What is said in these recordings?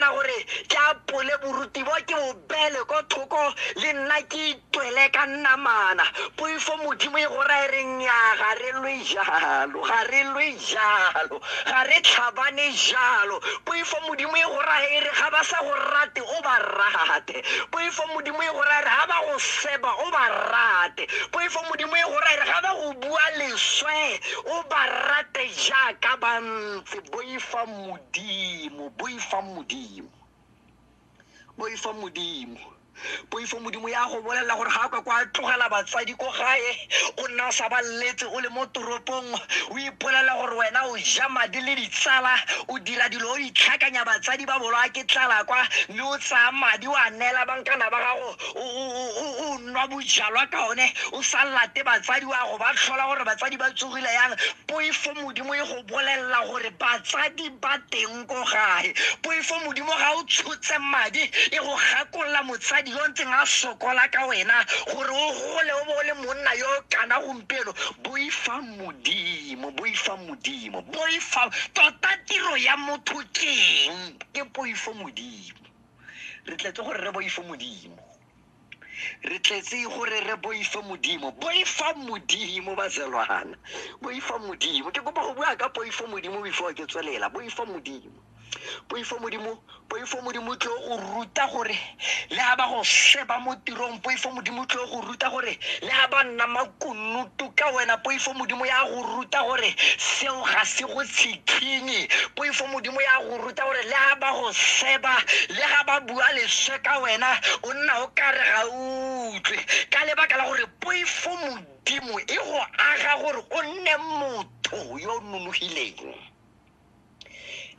na gore ke apole boruti bo ke bo beele ko thoko le nna ke itwele ka nnamana poifo modimo e go rae re nnyaa ga re lwe jalo ga re lwe jalo ga re tlhabane jalo poifo modimo e go rae e re ga ba sa go rate o ba rate poifo modimo e go rae re ga ba go seba o ba rate poifo modimo e go rae re ga ba go bua leswe o ba rate jaaka ba ntse boifa modimo Dimo, boifang Modimo. Boifang Modimo. Poifo Modimo ya go bolelela gore ga ka kwa tlogela batsadi ko gae o nna o sa ba letse o le mo toropong o ipolelela gore wena o ja madi le ditsala o dira dilo o itlhakanya batsadi ba bolo a ke tlala kwa mme o tsaya madi o a neela bankana ba gago o- o- o- o- o nwa bojalwa ka one o sa late batsadi wa go ba tlhola gore batsadi ba tsogile yang poifo Modimo e go bolelela gore batsadi ba teng ko gae poifo modimo ga o tshotse madi e go gakolola motsadi yo ntseng a sokola ka wena gore o gole o bo o le monna yo kana gompieno boifa modimo boifa modimo boifa tota tiro ya motho keng ke poifo modimo re tletse gore re boifo modimo re tletse gore re boifa modimo boifa modimo bazelwana boifa modimo ke kopa go bua ka poifo modimo before ke tswelela boifa modimo poifo modimo poifo modimo tlo go ruta gore le ga ba go sheba mo tirong poifo modimo tlo go ruta gore le ga ba nna makunutu ka wena poifo modimo ya go ruta gore seo ga se go tshikinye poifo modimo ya go botsa gore le ga ba go seba le ga ba bua leswe ka wena o nna o ka re ga utlwe ka lebaka la gore poifo modimo e go aga gore o nne motho yo o nonogileng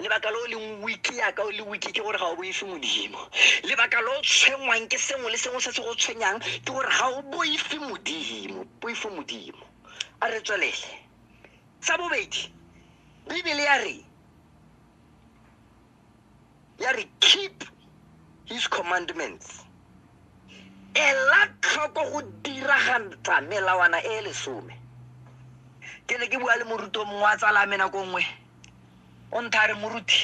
lebaka lo leng wiki yaka o le wiki ke gore ga o boife modimo lebaka lo tshwenngwang ke sengwe le sengwe se se go tshwenyang ke gore ga o boife modimo boife modimo a re tswelele sa bobedi bibele ya re ya re keep his commandments ela tlhoko go diragantsa melawana e lesome ke ne ke bua le moruti o mongwe wa tsala me nako nngwe o ntha re moruti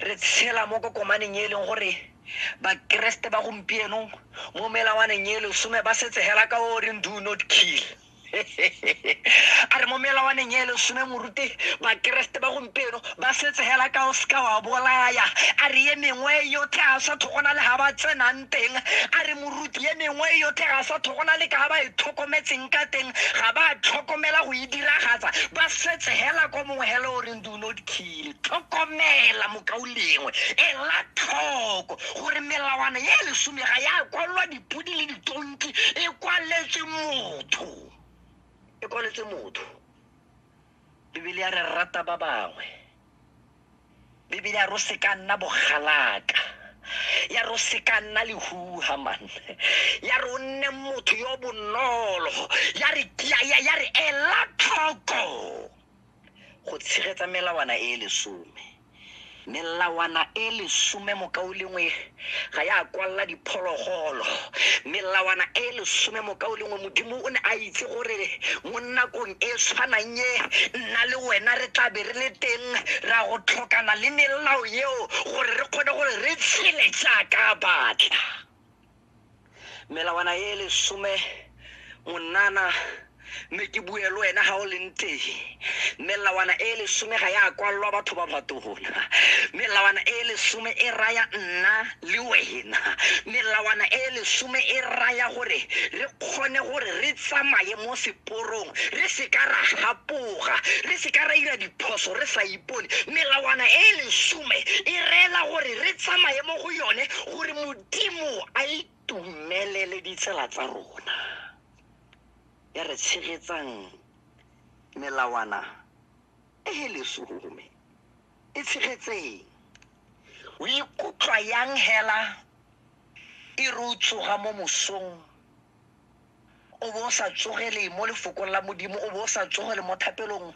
re tshela mo kokomaneng e leng gore bakeresete ba gompieno mo melawaneng e lesome ba setse hela ka o reng do not kill a re mo melawaneng e lesome morute bakeresete ba gompieno ba setse hela ka o seka wa bolaya a re ye mengwe e yotlhe a sa thogona le ga ba tsenang teng a re moruti ye mengwe e yotlhe ga sa thogona le ka ba e tlhokometseng ka teng ga ba tlhokomela go e diragatsa ba setse hela ko mongwe hela o reng do not kill tlhokomela mokao lengwe ela tlhoko gore melawana ye lesome ga ya kwalwa di dikgopo di le ditonki e kwaletse motho e kwaletse motho bibele ya re rata ba bangwe bibele ya ro se ka nna bogalaka ya ro se ka nna lehuha man ya re o nne motho yo bonolo ya re ya re ela tlhoko go tshegetsa melawana e lesome melawana e lesome mokaolengwe ga ya kwalela diphologolo melawana e lesome mokaolengwe modimo o ne a itse gore mo nakong e tshwanang e nna le wena re tla be re le teng ra go tlhokana le melao eo gore re kgone gore re tshele jaaka batla melawana e e lesome monana mme ke bue le wena ga o leng teng melawana e e lesome ga ya kwalelwa batho ba batona melawana e e lesome e raya nna le wena melawana e e lesome e raya gore re kgone gore re tsamaye mo seporong re se ka ra gapoga re se ka ra ira diphoso re sa ipone melawana e e lesome e reela gore re tsamaye mo go yone gore mo Modimo a itumelele ditsela tsa rona ya re tshegetsang melawana e e lesome e tshegetseng o ikutlwa yang hela e re o tsoga mo mosong o bo o sa tsogele mo lefokong la modimo o bo o sa tsogele mo thapelong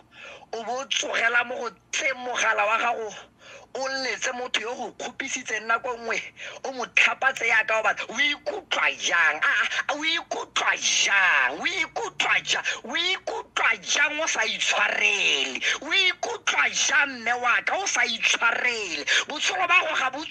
o bo o tsogela mo go tse mogala wa gago o letse motho yo go kgopisitseng nako nngwe o mo tlhapatse yaka o batla o ikutlwa jang a a, o ikutlwa jang o ikutlwa jang o ikutlwa jang o sa itshwarele o ikutlwa jang mme waka o sa itshwarele botshelo ba go ga bo